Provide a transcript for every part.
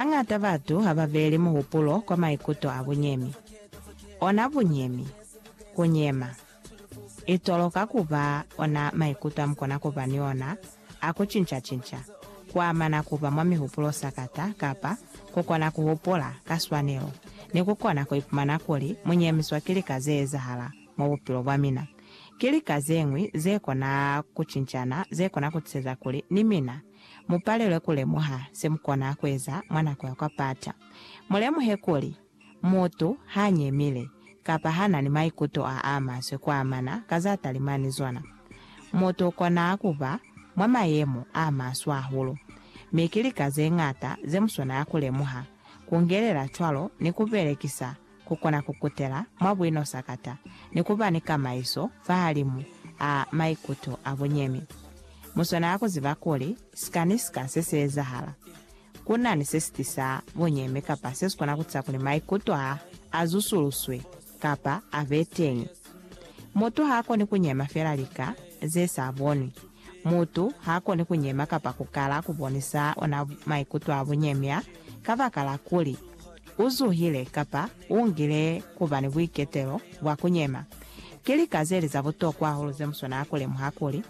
Hañata batu ha ba beeli muhupulo kwa maikuto a bunyemi. Ona bunyemi, ku nyema, i toloka ku ba ona maikuto a mu kona ku ba ni ona a ku cinca-cinca, ku amana ku ba mwa mihupulo sakata kapa ku kona ku hupula ka swanelo ni ku kona ku ipumana kuli mu nyemiswa ki lika ze ezahala mwa bupilo bwa mina. Ki lika ze ñwi ze kona ku cincana ze kona ku tiseza kuli ni mina Mu palelwe ku lemuha se mu kona ku eza mwa nako ya kwa pata. Mu lemuhe kuli, mutu ha nyemile, kapa ha na ni maikuto a a maswe ku amana ka za talimani zona, mutu u kona ku ba mwa mayemo a maswe hahulu. Mi ki lika ze ñata ze mu swanela ku lemuha, ku ngelela cwalo ni ku belekisa ku kona ku kutela mwa buino sakata ni ku ba ni kamaiso fahalimu a maikuto a bunyemi. Mu swanela ku ziba kuli sika ni sika se si ezahala, ku na ni se si tisa bunyemi kapa se si kona ku tisa kuli maikuto a a zusuluswe kapa a be teñi. Mutu ha koni ku nyema fela lika ze sa bonwi. Mutu ha koni ku nyema kapa ku kala ku bonisa ona maikuto a bunyemya kabakala kuli u zuhile kapa u ngile ku ba ni buiketelo bwa ku nyema. Ki lika ze li za butokwa hahulu ze mu swanela ku lemuha kuli,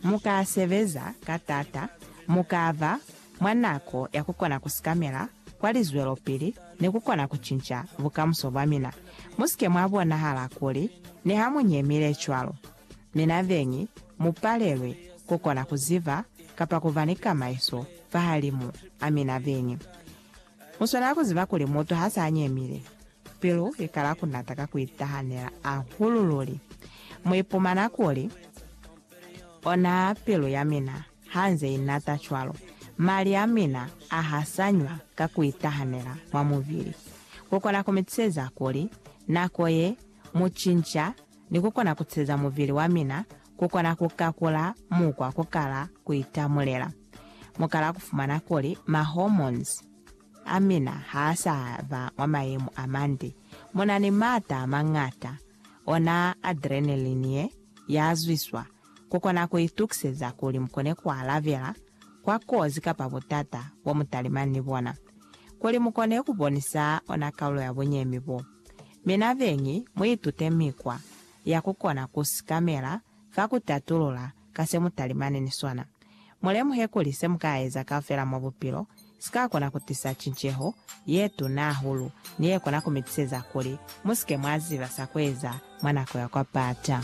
Mu ka sebeza ka taata, mu ka ba mwa nako ya ku kona ku sikamela kwa lizwelopili ni ku kona ku cinca bukamuso bwa mina. Mu si ke mwa bonahala kuli niha mu nyemile cwalo, Mi na beñi, mu palelwi ku kona ku ziba kapa ku ba ni kamaiso fahalimu a mina beñi. Mu swanela ku ziba kuli mutu ha sa nyemile, pilu i kala ku nata ka ku itahanela hahulu luli. Mu ipumana kuli, Ona pilu ya mina ha nze i nata cwalo, mali a mina a hasanywa ka ku itahanela mwa mubili. Ku kona ku mi tiseza kuli nako ye mu cinca ni ku kona ku ceza mubili wa mina ku kona ku kakula mukwa ku kala ku itamulela. Mu kala ku fumana kuli mahormones a mina ha a sa ba mwa mayemo a mande. Mu na ni maata a mañata, ona adrenaline ye ya zwiswa, ku kona ku itukiseza kuli mu kone ku alabela kwa kozi kapa butata bo mu talimani ni bona, kuli mu kone ku bonisa ona kaulo ya bunyemi bo. Mi nabeñi, muitute mikwa ya kukona ku sikamela fa ku tatulula ka se mutalimani ni sona. Mulemuhe kuli se mukaeza kaufela mwa bupilo sikakona kutisa cinceho yetuna hahulu ni yekona kumitiseza kuli musike mwaziba sa kueza mwa nako ya kwa pata.